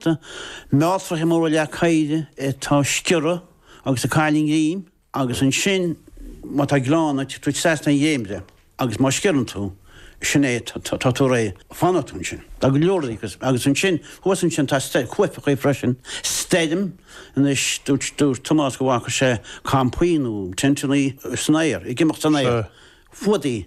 Tá mealltracha móra leac oighre atá ag sciorradh agus ag cailleadh a ngreim agus ansin má tá gleann ort tá tú trasna ar dhréimire agus má sciorrann tú, sin é, tá tú réidh fanfaidh tú ansin. Tá go leor de agus ansin thuas ansin tá cuaifeacha freisin, stoirm, anois dúirt Tomás go bhfaca sé campaí nó tenteannaí san aer, ag imeacht san aer, fuadaigh.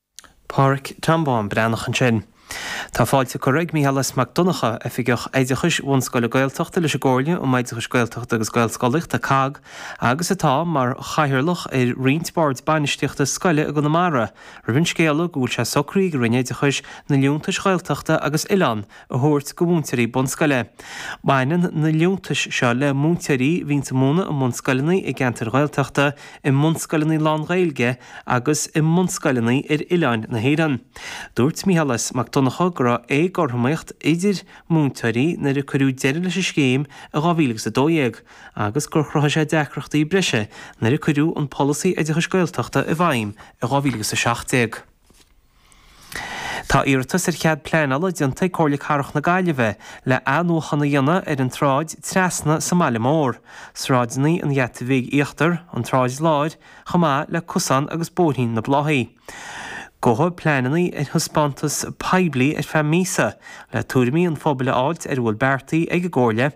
Pádraic Tom Bán Breathnach ansin. Tá fáilte curtha ag Micheál S. Mac Donnacha, Oifigeach Oideachais Bhunscoile Gaeltachta leis an gComhairle um Oideachais Gaeltachta agus Gaelscolaíochta, COGG, agus atá mar chathaoirleach ar roinnt boird bainistíochta scoile i gConamara, roimh an scéala go bhfuil sé socraithe ag an Roinn Oideachais na liúntais Ghaeltachta agus Oileánda. a thabhairt go mhúinteoirí bunscoile. Baineann na liúntais seo le múinteoirí a bhíonn ag múineadh i mbunscoileanna i gceantair Ghaeltachta, i mbunscoileanna lán-Ghaeilge agus i mbunscoileanna ar oileáin na hÉireann. Dúirt Micheál S. Mac Donnacha go raibh éagothromaíocht idir múinteoirí nuair a cuireadh deireadh leis an scéim i 2012 agus gur chruthaigh sé deacrachtaí breise nuair a cuireadh an Polasaí Oideachais Gaeltachta i bhfeidhm i 2017. Tá iarratas ar chead pleanála déanta ag Comhairle Cathrach na Gaillimhe le athnuachan a dhéanamh ar an tSráid Trasna sa mBaile Mór, sráideanna an Gheata Bhig Íochtar, an tSráid Láir, chomh maith le Cosán agus Bóithrín na Bláthaí. Gabhfaidh pleananna ar thaispeántas poiblí ar feadh míosa le tuairimí an phobail a fháilt ar a bhfuil beartaithe ag an gComhairle.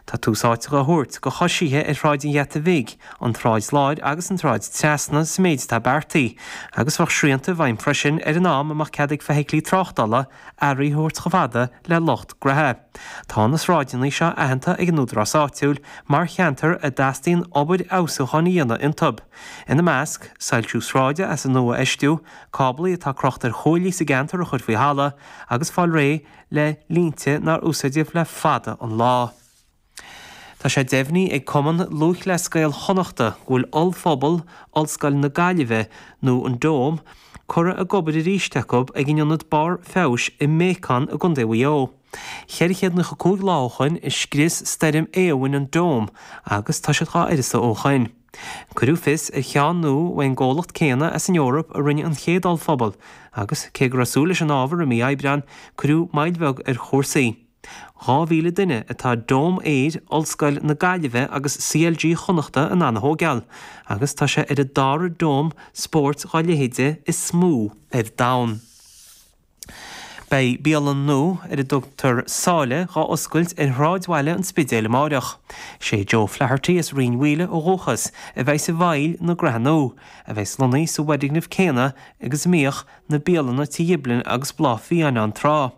Tá tús áite á thabhairt go coisithe ar Shráid an Gheata Bhig, an tSráid Láir agus an tSráid Trasna sa méid atá beartaithe, agus bheadh srianta i bhfeidhm freisin ar an am a mbeadh cead ag feithiclí tráchtála earraí a thabhairt chomh fada le lucht graithe. Tá na sráideanna seo aitheanta ag an údarás áitiúil mar cheantar a dteastaíonn obair fheabhsúcháin a dhéanamh iontu, ina measc, soilsiú sráide as an nua a fheistiú, cáblaí atá crochta ar chuaillí sa gceantar a chur faoi thalamh, agus fáil réidh le línte nár úsáideadh le fada an lá. Tá sé deimhnithe ag Cumann Lúthchleas Gael Chonnachta go bhfuil ollphuball Ollscoil na Gaillimhe, nó an Dome, curtha ag obair arís acu ag an ionad barr feabhais i mBéacán i gContae Mhaigh Eo. Cheithre chéad naocha cúig lá ó shoin a scrios Stoirm Éowyn an Dome agus tá siad dhá uireasa ó shoin. Cuireadh fios ar cheann nua ón gcomhlacht céanna as an Eoraip a rinne an chéad ollphuball agus, cé go raibh súil leis an ábhar i mí Aibreán, cuireadh moill bheag ar chúrsaí. 2,000 duine atá Dome Aeir Ollscoil na Gaillimhe agus CLG Chonnachta in ann a thóigeáil agus tá sé ar an dara Dome spóirt dá leithéide is mó ar domhan. Beidh bialann nua ar a dtugtar Sáile dhá oscailt ar shráidbhaile an Spidéil amáireach. Sé Joe Flaherty as Rinn Mhaoile ó dhúchas a bheidhs i bhfeighil na graithe nua, a bheidhs lonnaithe sa bhfoirgneamh céanna agus a mbíodh na bialanna Tigh Ghiblin agus Bláth Fiáin ann tráth.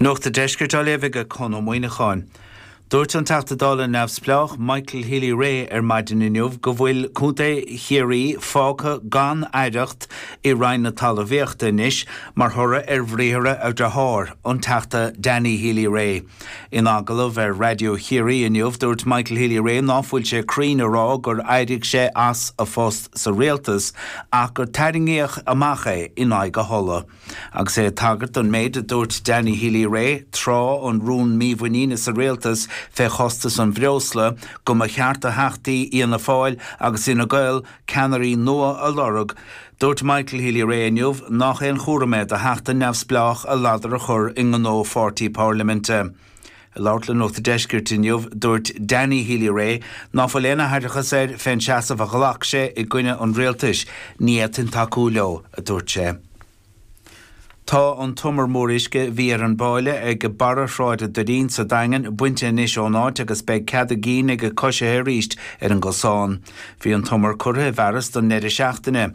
Nuachta Deiscirt á léamh age Conn Ó Muíneacháin. Dúirt an Teachta Dála neamhspleách Michael Healy Rae ar maidin inniu go bhfuil Contae Chiarraí fágtha gan aireacht i Roinn na Talamhaíochta anois mar thoradh ar bhriathra a dhriothár, an Teachta Danny Healy Rae. In agallamh ar Raidió Chiarraí inniu dúirt Michael Healy Rae ná fuil sé cruinn a rá gur éirigh sé as a phost sa Rialtas ach gur tarraingíodh amach é in aghaidh a thola. Agus é ag tagairt don méid a dúirt Danny Healy Rae tráth an rúin mímhuiníne sa rialtas fé chostas an bhreosla, go mba cheart do theachtaí Fhianna Fáil agus Fhine Gael ceannairí nua a lorg, dúirt Michael Healy Rae inniu nach aon chúram é do theachta neamhspleách a ladar a chur i ngnó pháirtí pairliminte. Ag labhairt le Nuachta Deiscirt inniu, dúirt Danny Healy-Rae ná fuil aon aithreachas air fén seasamh a ghlac sé i gcoinne an rialtais, ní fhéadfainn tacú leo, a dúirt sé. Tá an t-umar mór uisce a bhí ar an bpáille age barra Shráid an Doirín sa Daingean bainte anois ón áit agus beidh cead a gcinn age coisithe arís ar an gcosán. Bhí an t-umar curtha i bhfearas don ndeireadh seachtaine,